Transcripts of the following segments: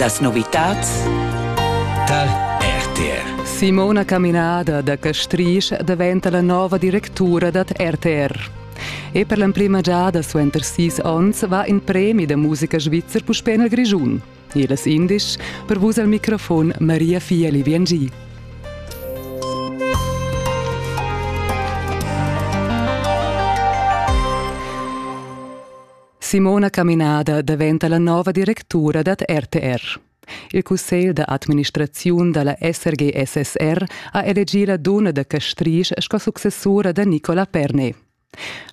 Las novitads tar RTR. Simona Caminada da Castrisch daventa la nova directura dad RTR. E per l'emprima giada suenter sis onns va in premi da musica svizzer puspè nel Grischun. Elas indisch, per vus al microfon Maria Fieli Viangi. Simona Caminada daventa la nova directura dad RTR. Il cussegl da administraziun dalla SRG-SSR ha elegì la dunna da Castrisch sco successura da Nicola Pernet.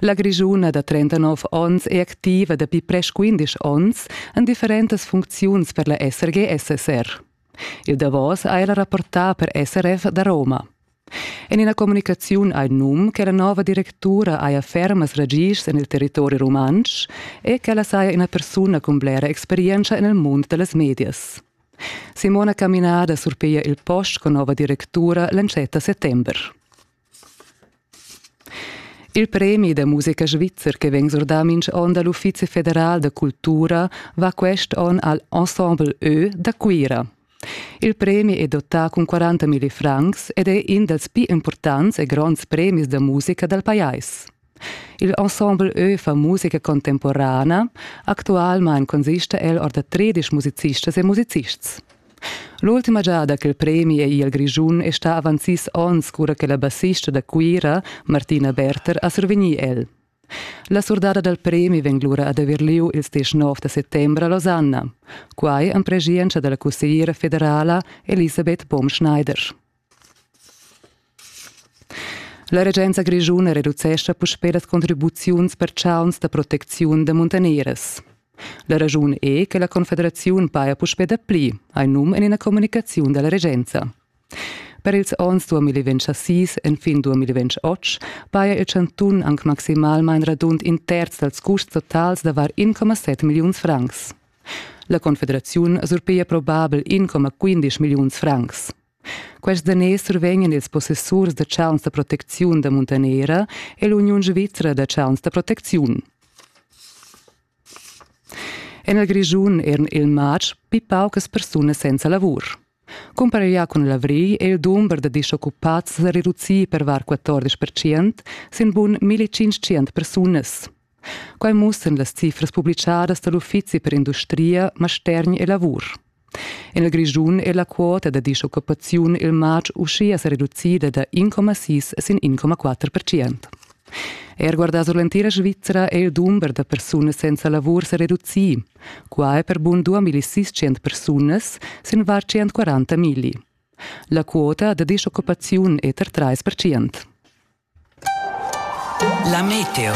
La Grischuna da 39 onns è activa dapi presch 15 onns en differentas funcziuns per la SRG-SSR. Il davos ha ella rapportà per SRF da Roma. En ina communicaziun ha il num che la nova directura haja fermas ragischs en il territori rumantsch e ch'ella saja ina persuna cun blera experientscha en il mund da las medias. Simona Caminada surpiglia il post con nova directura l'entschatta settember. Il premi da musica svizzer che vegn surdà minch onn dal Uffizi federal da cultura va quest onn al Ensemble Ö da Cuira. Il premi è dotà cun 40 milli francs ed è in dals pli impurtants e gronds premis da musica dal pajais. Il ensemble Ö fa musica contemporana. Actualmain consista el or da tredisch musicistas e musicists. L'ultima giada che il premi è il Grischun è stà avant sis onns cura che la bassista da Cuira, Martina Berter, ha survegnì el. La surdada dal premi vegn lura ad haver lieu ils diesch nov da settembre a Losanna. Quai en pregienza dalla cussegliera federala Elisabeth Baum-Schneider. La regenza grischuna reducescha puspè las contribuziuns per chauns da protecziun da muntaneras. La raschun è che la Confederaziun paja puspè dapli, hai num en ina communicaziun dalla regenza. Per ils onns 2006 enfin 2008 paja il chantun anc maximalmain radund in terz dals custs totals da var 1,7 milliuns francs. La Confederaziun surpiglia probabel 1,15 milliuns francs. Quest daners survegnan ils possessurs da chauns da protecziun da Muntanera e l'Uniun svizra da chauns da protecziun. En il Grischun eran il matg pli paucas persunas senza lavur. Cumpareglià cun l'avrigl è il dumber da disoccupads sa reducì per var 14 percent sin bun 1500 persunas. Quai mussan las cifras publicadas da l'Uffizi per industria, mastergn e lavur. En il Grischun è la quota da disoccupaziun il matg uschia sa reducida da 1,6 sin 1,4 percent. Er guardà sur l'entira Svizra è il dumber da persunas senza lavur sa reducì. Qua è per bun 2600 persunas sin var 140 migli. La quota da disoccupaziun è tar 3 La meteo.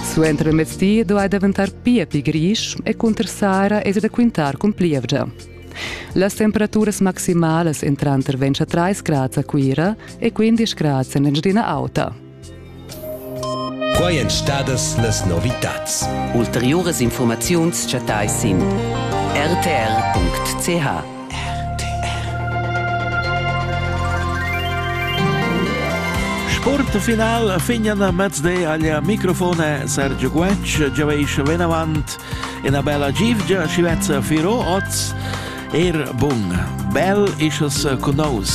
Suenter il mezdi duai daventar pia pli grisch e cunter Sara es da quintar cun plievgia. Las temperaturas maximalas en tranter 23 grads a Cuira e 15 grads en Engiadina Auta. Quai èn stadas las novitads. Ulteriuras informaziuns chattai sin rtr.ch. Sportfinal fignan mezde agl microfone Sergio Guetg, giaveis venavant Ina bella givgia schi vezza firo oz. Er bun, bel isches cunaus.